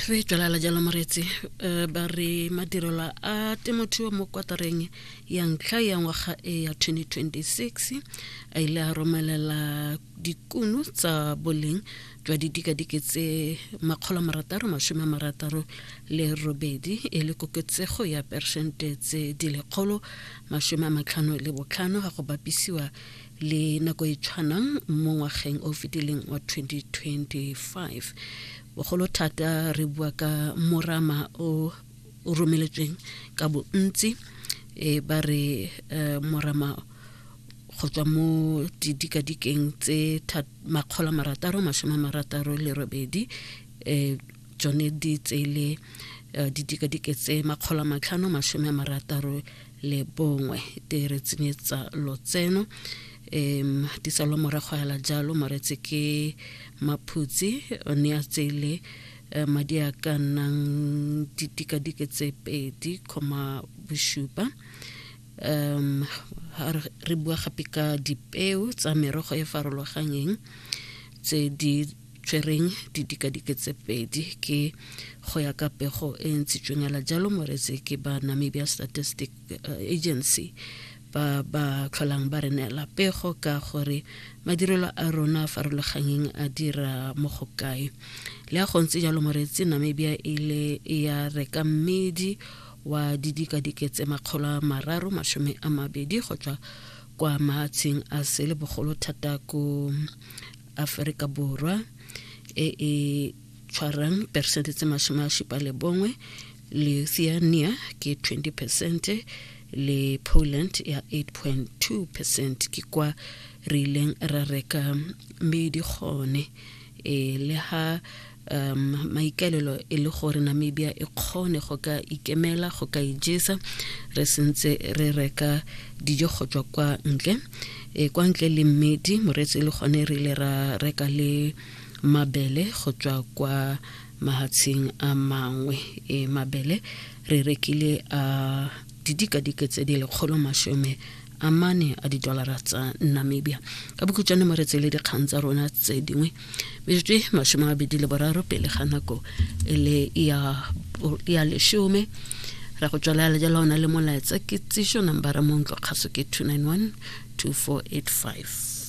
re tlelala jalo moretsi um ba re madirelo a temothuo mo kwatareng ya ntlha ya ngwaga e ya 2026 a ile a romelela dikuno tsa boleng jwa didikadike tse makgolo marataro masome a marataro le robedi e le koketsego ya persente tse di lekgolo masome a matlhano le botlhano ga go bapisiwa le nako e tshwanang mo ngwageng o fetileng wa 2025 bogolo thata re bua ka morama o o romeletsweng ka bontsi e ba re eh, morama go tswa mo didikadikeng tse makgolo marataro masome marataro le robedi um tsone di tsele eh, didikadike tse makgolo matlhano masome marataro le bongwe te re tsenyetsa lotseno um tisalo morago hela jalo moretse ke maphutsi o ne a tseile eh, madi a ka nnang ditikadike tse pedi kgoma bosupa um ha re- re bua gape ka dipeo tsa merogo e farologanyeng tse di tšereng didikadike tse pedi ke go ya ka pego e ntshitsweng ala jalo moretse ke ba namibia statistic eh, agency ba ba tlholang ba re neela pego ka gore madirelo a rona a farologanyeng a dira mo go kae le a gontse jalo moretsi namibia e le e ya reka mmedi wa didikadike tse makgolo a mararo masome a mabedi go tswa kwa maatsheng a sele bogolo thata ko aforika borwa e e tshwarang peresente tse masome a supa le bongwe lithuania ke 20 percent le poland ya 8.2 percent ke kwa re ileng ra reka mmedi gone e le ha um maikaelelo e le gore namibia e kgone go ka ikemela go ka ijesa re sentse re reka dijo go tswa kwa ntle e kwa ntle le mmedi moreetsi e le gone re ile ra reka le mabele go tswa kwa mahatsheng a mangwe e mabele re rekile a didikadike tse di lekgolo masome a mane a didolara tsa namibia ka bokhutšwane mo re tsele dikgang tsa rona tse dingwe metsotso e masome a bedi le boraro pele ga nako e le ya lesome ra go tswala le jalo ona le molaetsa ke tsišo nambara montlo kgaso ke 291 2485